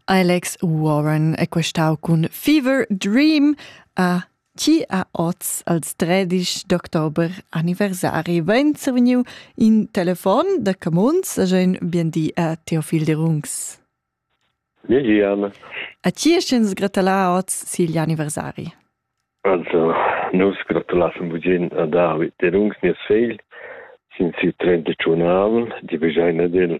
Alex Warren è questau cun Fever Dream a chi ha oz als tredisch d'october anniversari vain survegniu in telefon da Camuns a ün biendì a Teofil Derungs. Gigian. A chi sch'ins gratulà oz sigl anniversari? Also, nus gratulassen vugin a David Derungs, nies fegl, sin siu 31 avel, di begeina del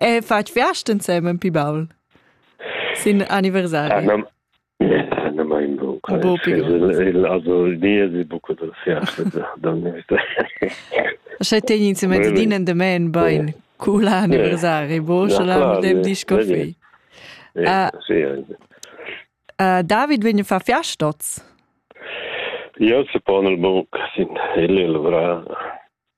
E fatg viast ensemen pi baul? Sin anniversari? Ne mai in bu. Il die bucco da Sche tegn ins in mezzadin endamen bain cu la anniversari, bo sche la medem disco fei. David vegn fa fiastots. Ja, se pon il buc sin il levra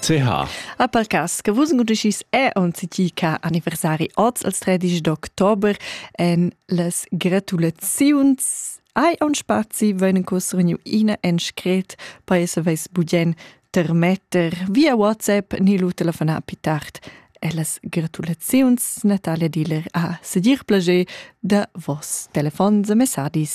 CH. A per cas che vus gudischis è onzi ti ca anniversari oz als 13 d'october en las gratulaziuns hai un spazi venen cosrignu ina en scret per essa veis budien termetter via WhatsApp ni lu telefonar pi tard e las gratulaziuns Natalia Diller a sedir plager da vos telefons e messadis.